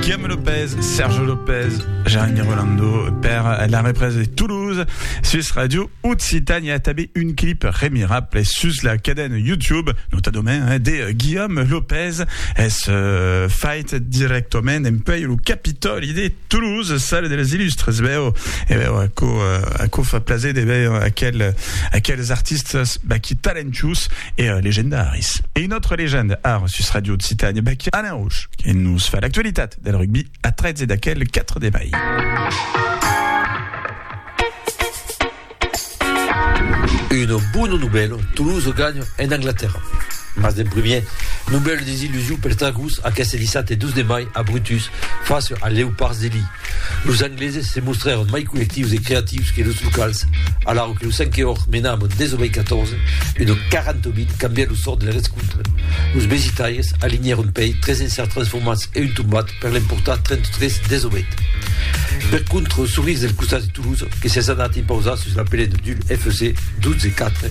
Guillaume Lopez, Serge Lopez, Jérémy Rolando, père la represe de Toulouse, Suisse Radio, Occitanie, a tabé un clip remirable sus la cadène YouTube, nota domaine, hein, de euh, Guillaume Lopez, es euh, fait directament en pei le Capitoli de Toulouse, salle de les illustres, e veu, e veu, a co, euh, a co fa plaser de veure aquel, aquels artistes, bah, qui talentus et euh, legendaris. Et une autre légende, art, sus Radio Occitanie, bah, qui Alain Aush, que nos fa l'actualitat del rugbi a 13 d'aquel 4 de mai. Una bona novèla, Toulouse ganha en Anglatèrra. Mas d'en primièr, novèla desillusion per Tagús aqueste dissabte 12 de mai a Brutus face als Leopards de Lille. Los Angleses se mostrèron mai collectius e creatius que los locals, alara que lo cinque òrt mena amb un 19 a 14 e lo 48 cambièt lo sòrt del rescontre. Los besitaires alinhèron pei 3 encerts transformats e un tombat per l'emportar 33 18. Per contra, los Souris del costat de Toulouse, que s'es anat impausar sus la pelena d'Hul FC 12 4,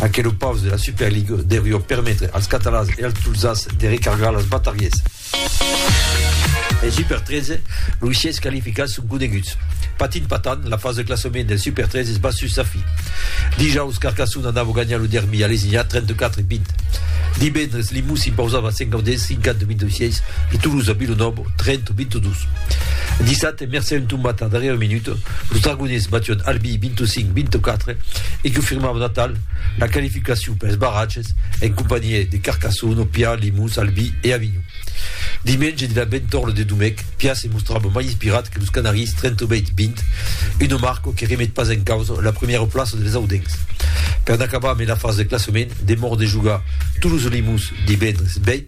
Aquelo paus de la Super League deurió permetre als catalans e als tolzans de recargar las bataries. En Super 13, los sièis qualificats son coneguts. Patin patan, la fasa de classament del Super 13 es bas sus sa fi. Dijaus, Carcassona anava ganhar lo derbi a Lesiña 34 20. Divendres, Limoux s'impausava a Sentgaudens 58 26 e Toulouse a Vilonòva 30 22. Dissabte, De mercé un tombat a la darrièra minuta, los Dragonés batión Albi 25, 24 e confirmavan atal la qualificacion pels barratges en companhiá de Carcassonne, Opià, Limós, Albi e Avinhon. Dimenge de la bentorna de Domèc, Pià se mostrava mai inspirat que los Canaris 38, 20, una marca que remet pas en causa la premièra plaça dels Audencs. Per n'acabar mai la fasa de classament, demòra de jogar Toulouse-Limós divendres 20,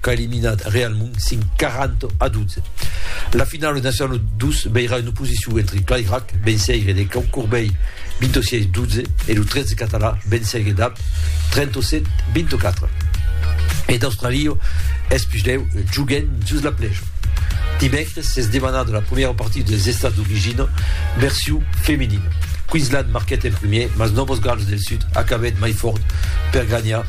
qu'a eliminat Real Mont 5 40 a 12. La finala nacional 2 veirà una oposicion entre Clairac, venceire de Cau Corbei 26 12 e lo 13 català venceire d'Ap 37 24. E d'Australio es puslèu juguen sus la plèja. Dimècres s'es demanada la premiera partida dels estats d'origina version femenina. Queensland marquèt en premier, mas Novos Gals del Sud acabèt mai fòrt per ganhar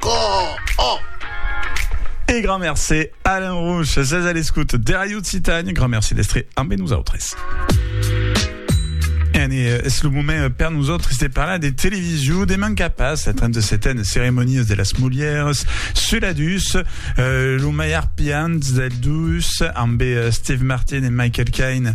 Coò! E grand mercé Alain Rouch, sètz a l'escòut de Ràdio Occitània, grand mercé d'èstre ambe nosautres. Anne, es lo moment per nosautres de parlar de television, deman qu'a pas la 37a ceremonias de las Molières, sula dus, lo mai arpiant del dus, ambe Steve Martin e Michael Caine,